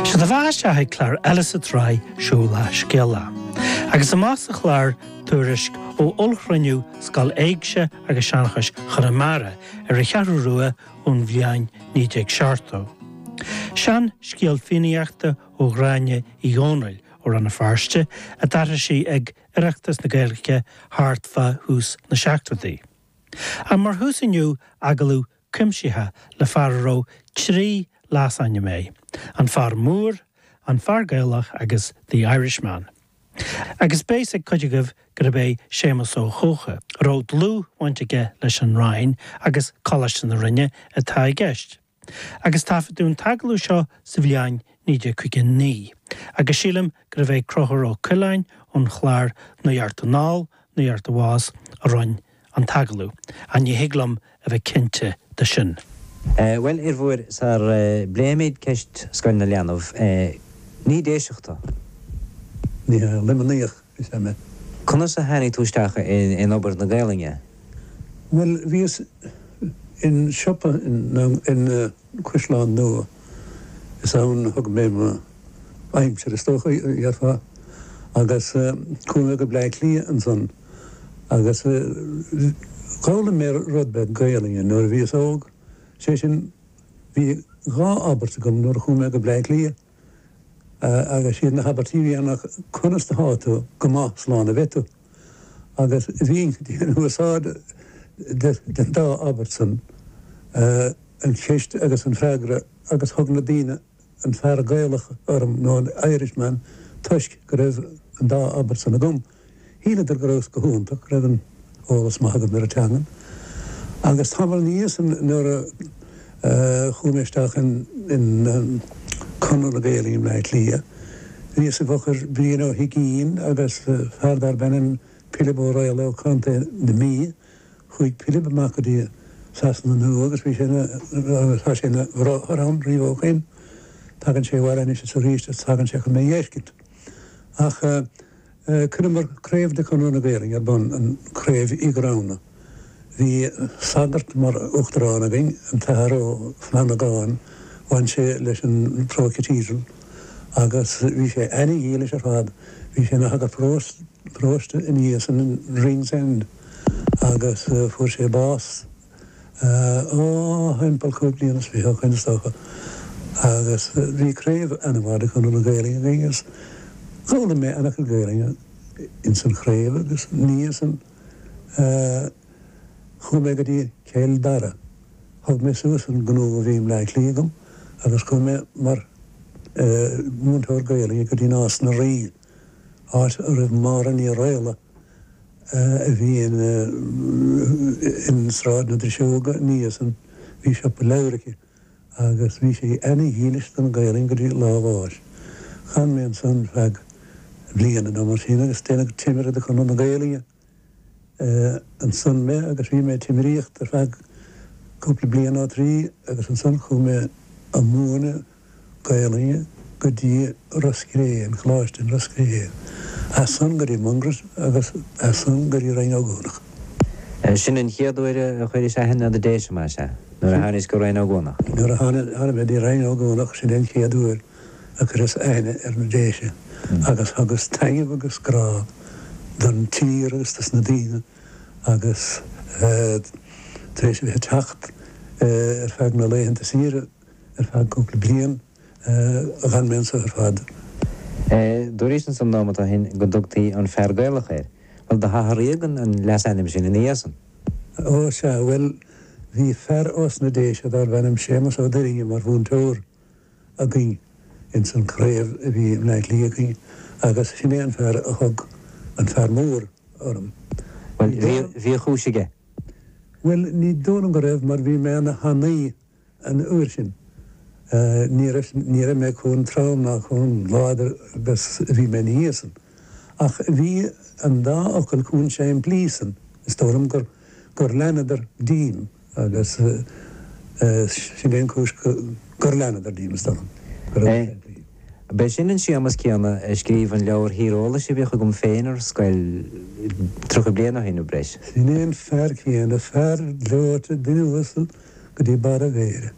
Sé do bheatha isteach ag clár eile sa tsraith Siúlach Scéalach agus amach sa chlár Tuairisc ó Ollchruinniú Scoil Éigse agus Seanchais Chonamara ar an Cheathrú Rua ón bhliain 1970. Seanscéal Fiannaíochta ó Ghráinne Uí Dhomhnaill ó Rann na Feirste a d'aithris sí ag Oireachtas na Gaeilge thart fá thús na seachtóidí. Ach mar thús inniu agallamh cuimsitheach le fear a raibh trí leasainm aige, An Fear Mór, An Fear Gaelach agus The Irishman. Agus beidh a fhios ag cuid agaibh gurb é Séamus Ó hEocha, a raibh dlúthbhaint aige leis an Rinn agus Coláiste na Rinne, atá i gceist. Agus taifeadadh an t-agallamh seo sa bhliain 1959. Agus sílim gurbh é Conchúr Ó Coileáin ón chlár Nuacht Anall, Nuacht Abhus a rinn an t-agallamh, ach ní thig liom a bheith cinnte de sin. Bhuel, a Fhir Mhóir sar a bpléimid ceist Scoil na Leanbh. Ní Déiseach tú. Ní hea, Luimníoch is ea mé. Conas a tháinig tú isteach in obair na Gaolainne? Bhuel, bhíos in siopa in. Caisleán Nua. Is ann a thug mé m'aimsir is dócha, dhéarfá? Agus chuaigh mé go Bleá Cliath ansan agus d'fhoghlaim mé rud beag Gaelainne nuair a bhíos óg, sé sin bhí dhá abairt agam nuair a chuaigh mé go Bleá Cliath. agus is iad na habairtí a bhí ann ach conas atá tú? Go maith, slán a bheidh tú. Agus bhínn ag déanamh úsáid den dá abairt san, an cheist agus an freagra agus thug na daoine an fear Gaelach orm nó an Irishman toisc go raibh an dá abairt san agam. Shíleadar go rabhas go hiontach, go raibh an-eolas maith agam ar an teangan. Agus tamall ina dhiaidh san nuair a chuaigh mé isteach in Conradh na Gaeilge i mBleá Cliath, bhíos i bhfochair Brian Ó hUigínn agus fear darb ainm Pilib Ó Raola ó Chontae na Mí. Chuaigh Pilib amach go dtí Sasana Nua agus bhí sé ina, agus tá sé ina, bhráthair ann riamh ó shoin. Tagann sé abhaile anois is arís agus tagann sé chun mé a fheiscint. Ach. Cuireamar craobh de Chonradh na Gaelinne ar bun, an Craobh Uí Ghramhna. Bhí sagart mar uachtarán againn, an tAthair Ó Flanagáin. Bhain sé leis an Pro-Cathedral agus bhí sé ana-dhílis ar fad. Bhí sé ina shagart paróiste ina dhiaidh san in Ringsend agus fuair sé bás thimpeall cúig bliana is fiche ó shoin is dócha agus bhí craobh an-mhaith de Chonradh na Gaelinne againn agus d'fhoghlaim mé an-chuid Gaelinne ins an chraobh agus ina dhiaidh san chuaigh mé go dtí Cill Dara. Thug mé suas an gnó a bhí i mBleá Cliath agam agus chuaigh mé mar mhúinteoir Gaelinne go dtí Nás na Rí, áit a raibh Máire Ní Raghallaigh, a bhí in Sráid na Driseoige ina dhiaidh san, bhí siopa leabhar aici agus bhí sí ana-dhílis don Ghaelainn go dtí lá a bháis. D'fhan mé ansan feadh bliana nó mar sin agus déanadh timire de Chonradh na Gaelainne ansan mé agus bhí mé ag timiríocht ar feadh cúpla bliain, nó trí, agus ansan chuaigh mé ag múineadh. Gaelainne go dtí Ros Cré, an Coláiste in Ros Cré, as san go dtí Mungret agus as san go dtí Rinn Ó gCuanach. Sin an chéad uair a chuiris aithne ar na Déise, más ea, nuair a tháinig tú go Rinn Ó gCuanach. Nuair a thána mé dtí Rinn Ó gCuanach, sin é an chéad uair a chuireas aithne ar na Déise agus thugas taitneamh agus grá don tír agus dos na daoine agus tar éis a bheith ag teacht ar feadh na laethanta saoire, ar feadh cúpla bliain. D'fhan mé anseo ar fad. Dúiris anso nóimeat ó shin go dtugtaí an Fear Gaelach ort. Bhuel, do hathraíodh an leasainm sin ina dhiaidh san. Ó, sea, bhuel, bhí fear ós na Déise darbh ainm Séamas Ó Duirinne mar mhúinteoir againn ins an craobh a bhí i mBleá Cliath againn agus sin é an fear a thug An Fear Mór orm. Bhuel, bhí a chúis aige. Bhuel, ní dóigh liom go raibh mar bhí mé ana-thanaí. an uair sin. Ní raibh mé comh trom ná comh láidir agus a bhí mé ina dhiaidh san, ach bhí an dá fhocal comh simplí san, is dóigh liom gur leanadar díom agus sin é an cúis gur leanadar díom, is dóigh liom. B'é sin an Séamas céanna a scríobh an leabhar tíreolais a bhíodh agam féin ar scoil tríocha bliain ó shin nó breis. Sin é an fear céanna, fear gleoite, duine uasal. go dtí barr a mhéire.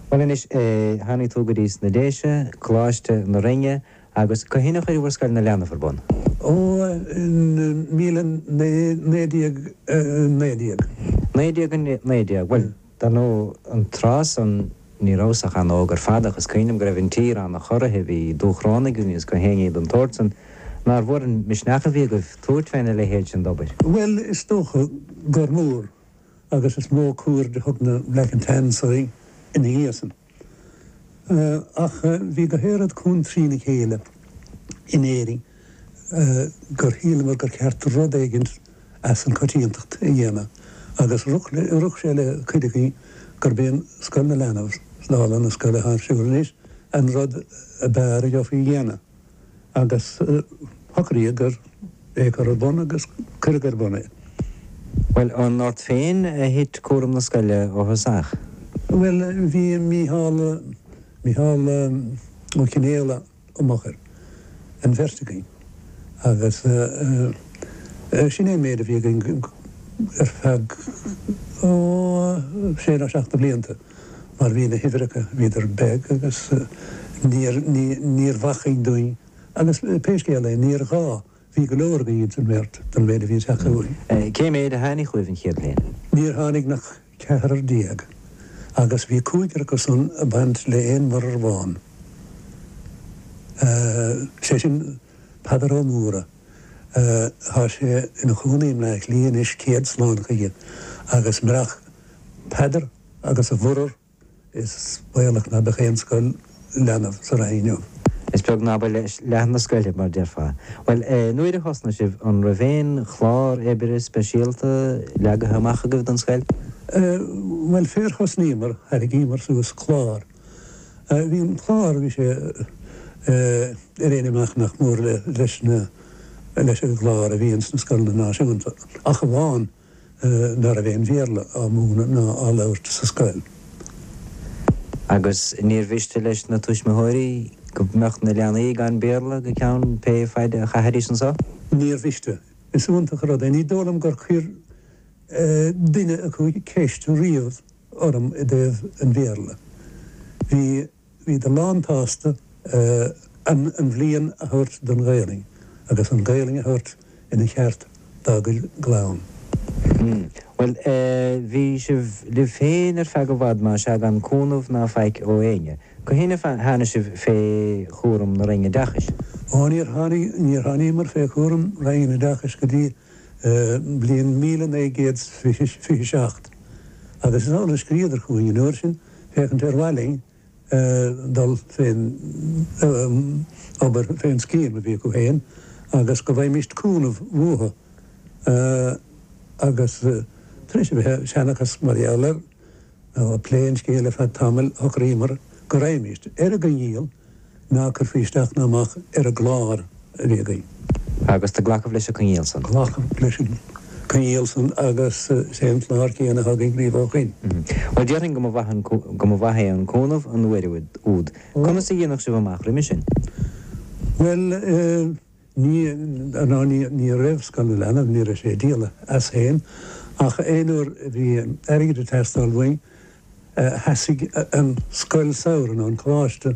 Bhuel anois, tháinig tú go dtí sna Déise, Coláiste na Rinne agus cathain a chuireabhair Scoil na Leanbh ar bun? Ó, in míle naoi naoi déag naoi déag. Naoi déag naoi déag. Bhuel, dar ndó an tráth san ní rabhas ach an-óg ar fad ach is cuimhin liom go raibh an tír an-chorraithe, bhí Dúchrónaigh againn agus gach aon ní den tsórt san. Nár mhór an misneach a bhí agaibh tabhairt féna leithéid sin d'obair? Bhuel, is dócha gur mór. agus is mó cuaird a thug na Black and Tans air ina dhiaidh san. Ach bhí gach aon rud chomh trí na chéile in Éirinn gur shíleamar gur cheart rud éigin as an coitiantacht a dhéanamh agus rith sé le cuid againn gurb é Scoil na Leanbh, dála na scoile athá ar siúl anois, an rud ab fhearr a gheofaí a dhéanamh. agus socraíodh ar é a chur ar bun agus cuireadh ar bun é. Bhuel, an ort féin a thit cúram na scoile ó thosach? Bhuel, bhí Mícheál, Mícheál Ó Cionfhaola i m'fhochair an bheirt againn agus sin é an méid a bhí againn ar feadh, ó, sé nó seacht de bhlianta. mar bhí na huimhreacha, bhíodar beag agus níor, ní, níorbh acmhainn dúinn agus pé scéal é, níor ghá, bhí go leor againn ins an mbeirt don mhéid a bhí ag teacht chugainn. Cé méid a tháinig chugaibh an chéad bhliain? Níor tháinig nach ceathrar déag agus bhí cúigear acu san ag baint le aon mhuirear amháin, sé sin, Peadar Ó Mórdha. Tá sé ina chónaí i mBleá Cliath anois, céad slán chuige, agus murach Peadar agus a mhuirear is baolach ná beadh aon scoil leanbh sa Rinn inniu. Is beag ná ba leath na scoile, mar déarfá. Bhuel, nuair a thosnaigh sibh, an raibh aon chlár oibre speisialta leagaithe amach agaibh don scoil? Bhuel, fér thosnaíomar, tharraingíomar suas clár. Bhí an clár, bhí sé ar aon imeacht nach mór leis na leis an gclár a bhí ins na scoileanna náisiúnta ach amháin ná raibh aon Bhéarla á múineadh ná á labhairt sa scoil. Agus níor mhiste leis na tuismitheoirí go mbeadh na leanaí gan Béarla go ceann pé faid a chaithfidís anseo. Níor mhiste. Is iontach an rud é. Ní dóigh liom gur chuir duine acu ceist riamh. orm i dtaobh an Bhéarla. Bhí bhíodar lántsásta an bhliain a thabhairt don Ghaelainn agus an Ghaelainn a thabhairt ina cheart dá gcuid clann. Bhuel, bhí sibh libh féin ar feadh i bhfad más ea gan cúnamh ná faic ó éinne. Cathain a tháinig sibh fé chúram na Roinne Oideachais. Ó, níor tháinig, níor tháiníomar fé chúram Roinn an Oideachais go dtí mbliain míle naoi gcéad 's fiche seacht, agus is amhlaidh a scríobhadar chugainn an uair sin, féachaint ar mhaith linn dul fén obair, fén scéim a bhí acu féin, agus go bhfaighmíst cúnamh uathu, agus tar éis a bheith ag seanchas mar gheall air. nó ag plé an scéil ar feadh tamaill shocraíomar go raghaimis ar an gcoinníoll ná curfaí isteach ná amach ar an gclár a bhí againn. Agus do glacamh leis an coinníoll san? Glacamh leis an coinníoll san agus is é an clár céanna a thugann riamh ó shoin. Bhuel, déarfainn go mba mhaith an, go mba mhaith é an cúnamh an uair úd. Conas a dhéanadh sibh amach roimis sin? Bhuel, eh, Ní, ná ní, ní raibh scoil na leanbh, ní raibh sé ag díol as féin, ach aon uair a bhí airgead ag teastáil uainn, sheasaigh an scoil samhraidh, nó an coláiste,